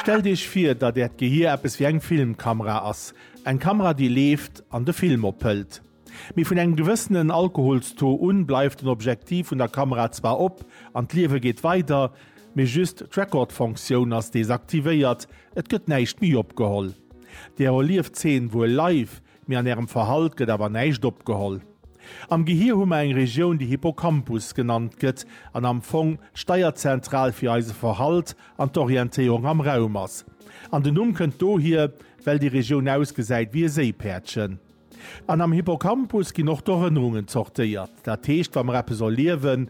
Stellt Iech vir, datt Äert Gehier eppes wéi eng Filmkamera ass. Eng Kamera, déi leeft an de Film ophëlt. Mee vun engem gewëssenen Alkoholstaux un bleift den Objektiv vun der Kamera zwar op an d'Liewe geet weider, mee just d'Record-Fonctioun ass desaktivéiert, et gëtt näischt méi opgeholl. Där erlieft d'Zeen wuel live, Mee an ärem Verhalt gëtt awer näischt opgeholl. Am Gehir hu mer eng Regioun, déi Hippocampus genannt gëtt an am Fong d'Steierzentral fir eise Verhalt an d'Orientéierung am Raum ass. An den Numm kënnt dohier, well déi Regioun ausgesäit wéi e Séipäerdchen. An am Hippocampus ginn och d'Erënnerungen zortéiert. Dat heescht, wa mer eppes erliewen,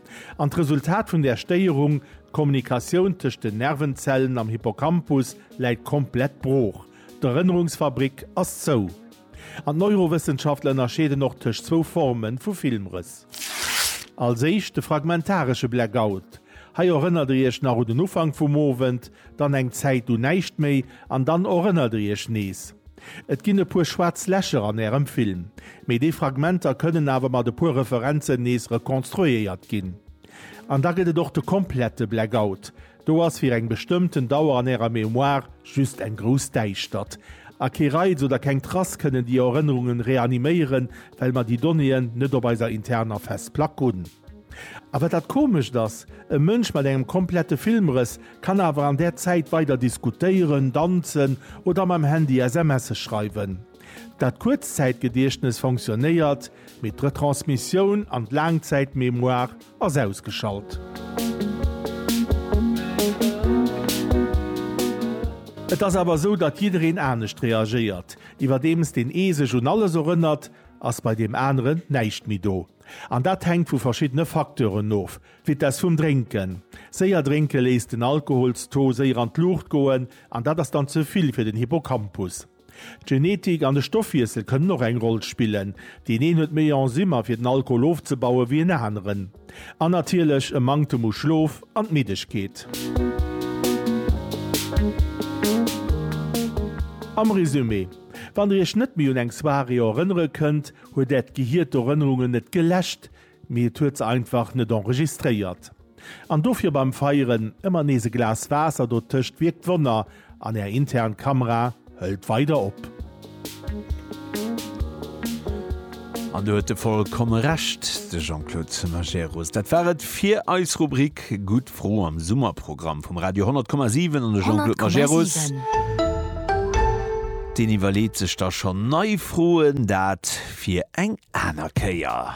An d'Resultat vun där Stéierung, d'Kommunikatioun tëscht den Nervenzellen am Hippocampus läit komplett brooch, d'Erënnerungsfabrik ass zou. An d'Neurowëssenschaftler ënnerscheeden och tëscht zwou Forme vu Filmrëss. Als éischt de fragmentaresche Blackout, hei erënnert der iech nach un den Ufank vum Owend, dann eng Zäit un näischt méi an dann erënnert der iech nees. Et ginn e puer schwaarz Lächer an Ärem Film, mee déi Fragmenter kënnen awer mat e puer Referenzen nees rekonstruéiert ginn. An da gëtt et och de komplette Blackout, do ass fir eng bestëmmten Dauer an Ärer Mémoire just eng grouss Däischtert. A kee Reiz oder keng Trace kënnen déi Erënnerungen reaniméieren, well mer déi Donnéeën net op eiser interner Festplack hunn. A wat dat Komescht ass, e Mënsch mat engem komplette Filmrëss kann awer an där Zäit weider diskutéieren, danzen oder mam Handy SMSe schreiwen. Dat Kuerzzäitgediechtnes fonctionnéiert, mee d'Retransmissioun an d'Laangzäitmémoire ass ausgeschalt. Et ass awer esou, datt jiddereen anescht reagéiert. Iwwerdeems deen ee sech un alles erënnert, ass bei deem aneren näischt méi do. An dat hänkt vu verschiddene Facteuren of, d'Vitess vum Drénken. Séier drénke léisst den Alkoholstaux séier an d'Luucht goen an dat ass dann ze vill fir den Hippocampus. D'Genetik an de Stoffwiessel kënnen och eng Roll spillen, deen een huet méi Enzymer fir den Alkohol ofzebaue wéi en aneren. An natierlech e Manktem u Schlof an d'Middegkeet. Am Resumé, Wann der iech net méi un eng Soirée erënnere kënnt, Huet Äert Gehier d'Erënnerungen net geläscht, mee et huet se einfach net enregistréiert. An dofir beim Feieren ëmmer nees e Glas Waasser dotëscht wierkt Wonner an Är intern Kamera hëlt weider op. An do huet e vollkomme Recht, de Jean-Claude Majerus. Dat war et fir eis Rubrik Gutt. Fro am Summerprogramm vum Radio 100,7 an de Jean-Claude Majerus. 100,7. Deen iwwerleet sech da schonn nei Froen. Dat fir eng aner Kéier.